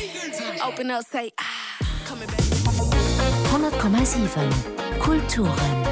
100,7 Kulturen.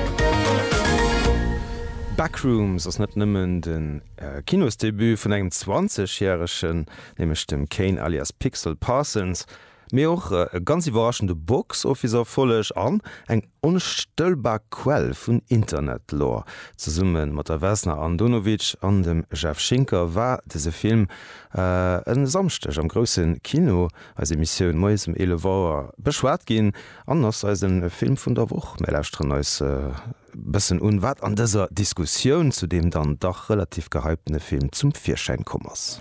Backrooms ass net nëmmen de Kinosdebut vun engem 20 järegen, nämlech dem Kane alias Pixel Parsons, mee och e ganz iwwerraschende Box Office Erfolleg an eng Onstëllbar Quell vun Internet-Lore. Zesumme mat der Vesna Andonovic an dem Jeff Schinker war dëse Film e Samschdeg am grousse Kino, eis Emissioun moies um 11 Auer, beschwat ginn an ass eise Film vun der Woch. Mir lauschteren eis e bëssen un, wat an dëser Diskussioun zu deem dann dach relativ gehyptene Film zum Virschäin komm ass.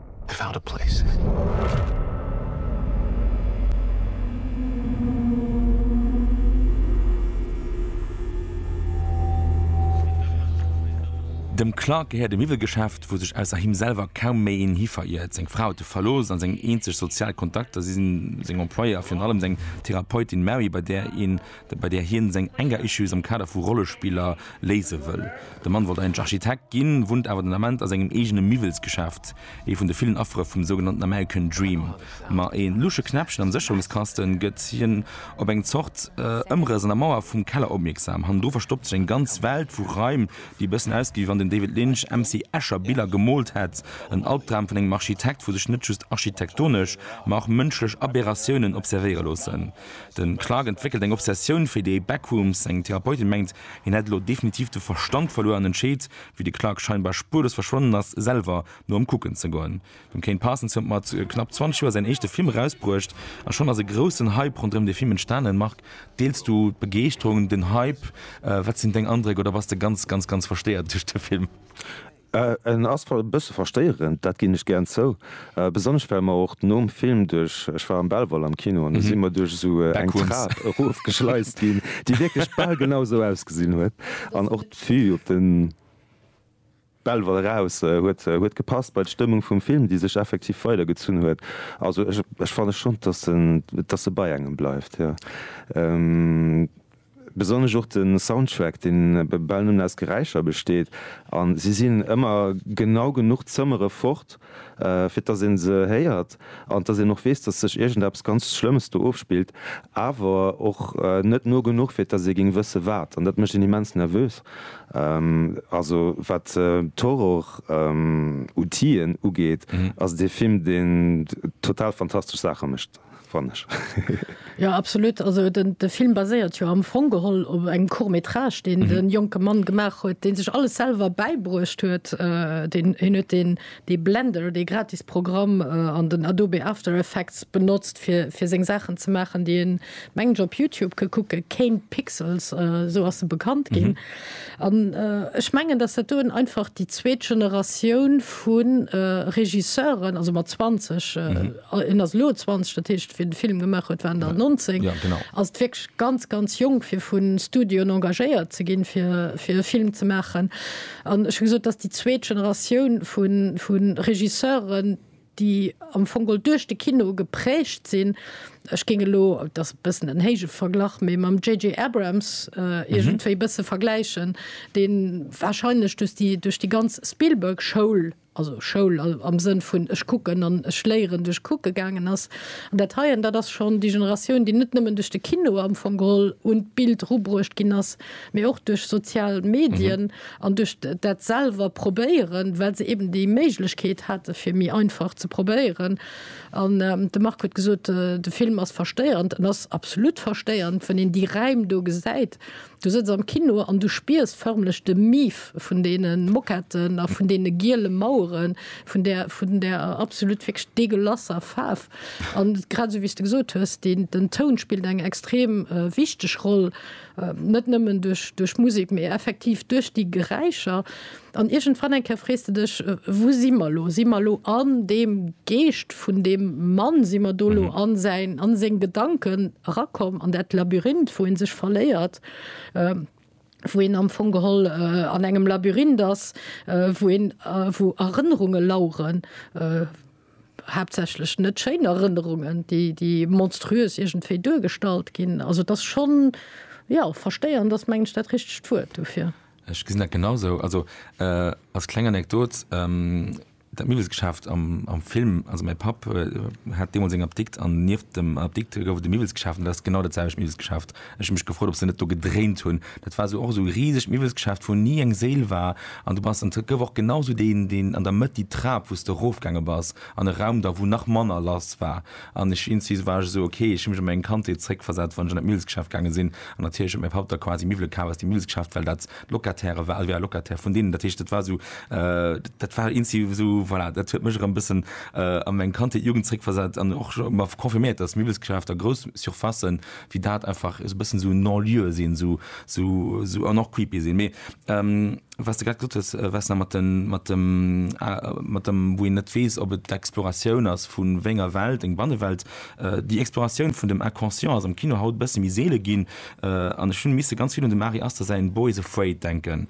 I found a place. Dem Clark gehéiert e Miwwelgeschäft, wou sech ausser him selwer kaum méi een hi veriert. Seng Fra huet e verlooss, a seng eenzeg sozial Kontakter si seng Employéeë a virun allem seng Therapeutin Mary, bei där een bei där hien seng Anger Issues am Kader vu Rollespiller léise wëll. De Mann wollt eigentlech Architekt ginn, wunnt awer den Ament a sengem eegene Miwwelsgeschäft, ee vun de villen Affere vum sougenannten American Dream. Ma ee lusche Knäppchen am Sécherungskasten gëtt hien op eng Zort Ëmrëss an der Mauer vum Keller opmierksam. Hannendru verstoppt sech eng ganz Welt vu Raim, déi e bëssen ausgeet, wéi wann den David Lynch MC Escher Biller gemoolt hätt. En Albdram vun engem Architekt, wou sech net just architektonesch, ma och mënschlech Aberratiounen observéiere loossen. De Clark entwéckelt eng Obsessioun fir déi Backrooms. Seng Therapeutin mengt, hien hätt elo definitiv de Verstand verluer an entscheet, wéi de Clark scheinbar spuerlos verschwonnen ass, selwer no em kucken ze goen. Dem Kane Parsons huet mat knapp 20 Joer säin éischte Film erausbruecht a schonn ass e groussen Hype ronderëm dee Film entstanen. Marc, deels du d'Begeeschterung, den Hype? Wat sinn deng Andréck? Oder bass de ganz, ganz, ganz verstéiert duerch de Film? En ass e bësse verstéierend, dat ginn ech gären zou, besonnesch well mer och nom Film duerch, ech war am Belval am Kino, an do si mer duerch esou eng Trap erofgeschleist ginn, déi wierklech bal genau esou ausgesinn huet. An och d'Vue op de Belval eraus huet gepasst bei d'Stëmmung vum Film, déi sech effektiv weidergezunn huet. Also ech fanne schonn, dass e bei engem bleift, jo. Besonnesch och de Soundtrack, dee bal nëmmen aus Geräischer besteet, a si sinn ëmmer genau genuch d'Zëmmere fort, fir dass ee se héiert an dass een och weess, dass sech iergendeppes ganz Schlëmmes do ofspillt, awer och net no genuch, fir dass ee géing wësse wat. An dat mécht een immens nervös. Also wat d'Horror-Outien ugeet, ass et ee Film, deen total fantastesch Saache mécht. fann ech. Jo, absolut. Also den, de Film baséiert jo am Fong geholl op engem Court métrage, deen mhm. den jonke Mann gemaach huet, deen sech alles selwer beibruecht huet. Äh, den hin huet den de Blender, de gratis Programm äh, an den Adobe After Effects benutzt fir fir seng Sachen ze machen, die en mengen op Youtube ke kucke Kane Pixels äh, so ass se bekannt gin. Mhm. An äh, ech mengen, dass dat doen einfach die zweet Generatioun vun äh, Regisseuren, also mat 20 äh, mhm. En ass elo 20, dat heescht wéi de Film gemaach huet, war en dann 19. Ass et wierklech ganz, ganz jonk fir vu Studioen engagéiert ze ginn, fir fir e Film ze maachen. An ech hu gesot, dass déi zweet Generatioun vu vu Regisseuren, déi am Fong geholl duerch de Kino geprägt sinn, ech géing elo, et ass e bëssen en héije Verglach, mee mam JJ. Abrams iergendwéi e bësse vergläichen, dee warscheinlech duerch déi duerch déi ganz Spielberg-Schoul also Schoul am Sënn vun ech kucken an ech léieren duerch kucke gaangen ass. An dat heien, dat ass schonn déi Generatioun, déi net nëmmen duerch de Kino am Fong geholl un d'Bild erubruecht ginn ass, mee och duerch sozial Medien an duerch dat selwer probéieren, well se eben déi Méiglechkeet hate fir méi einfach ze probéieren. An de Marc huet gesot, de Film ass verstéierend. En ass absolut verstéierend, wann een déi Räim do gesäit, Du sëtz am Kino an du spiers förmlech de Mief vun deene Moquetten a vun deene giele Maueren, vun där, vun där absolut wierklech degueulasser Faarf. An grad esou, wéi s de gesot hues, deen, den Toun spillt eng extrem wichteg Roll, net nëmmen duerch, duerch d'Musek, mee effektiv duerch déi Geräischer. An iergendwann eng Kéier frees de dech, Wou si mer elo? Si mer elo an deem Geescht vun deem Mann? Si mer do elo an säin, an seng Gedanken erakomm, an dat Labyrinth, wou ee sech verléiert, wou een am Fong geholl an engem Labyrinth ass, wou een, wou Erënnerunge laueren, haaptsächlech net schéin Erënnerungen, déi, déi monstruös iergendwéi duergestallt ginn. Also et ass schonn, jo, versteieren ass, mengen ech, dat richtegt Wuert dofir. Ech gesinn dat genau esou. Also als kleng Anekdot, Dat Miwwelsgeschäft am am Film, also mäi Papp hat deemools eng Apdikt an nieft dem Apdikt gouf et e Miwwelsgeschäft an dat ass genau dat selwecht Miwwelsgeschäft. Ech hu mech gefrot, ob se net do gedréint hunn. Dat war esou och esou e risegt Miwwelsgeschäft, wou ni eng Séil war an du bass an et gouf och genau esou deen deen an der Mëtt déi Trap, wou s de erofgaange bass an e Raum da wou nach manner lass war. An ech insti war ech esou, ok, ech hu mech an meng Kandheet zréckversat, wann ech an dat Millsgeschäft gaange sinn, an natierlech huet mäi Papp da quasi Miwwele kaf aus dem Millsgeschäft, well dat d'Locataire war, also, ja, Locataire vun deenen. Dat heescht, dat war esou, dat war insti esou, voilà, dat huet mech erëm bëssen a meng Kandheet, Jugend zréckversat an och mer confirméiert, dass Miwwelsgeschäfter, grouss Surfacen wéi dat einfach esou e bëssen esou non-lieu sinn, esou, esou, esou an och creepy sinn. Mee. Wat s de grad gesot hues, Vesna, mat den, mat dem, mat dem, wou een net weess, ob et d'Exploratioun ass vu wéi enger Welt, eng Bannewelt. Déi Exploratioun vun dem Inconscient ass am Kino haut e bësse méi seele ginn an ech hunn misse ganz vill un dem Ari Aster säin Boys Afraid denken.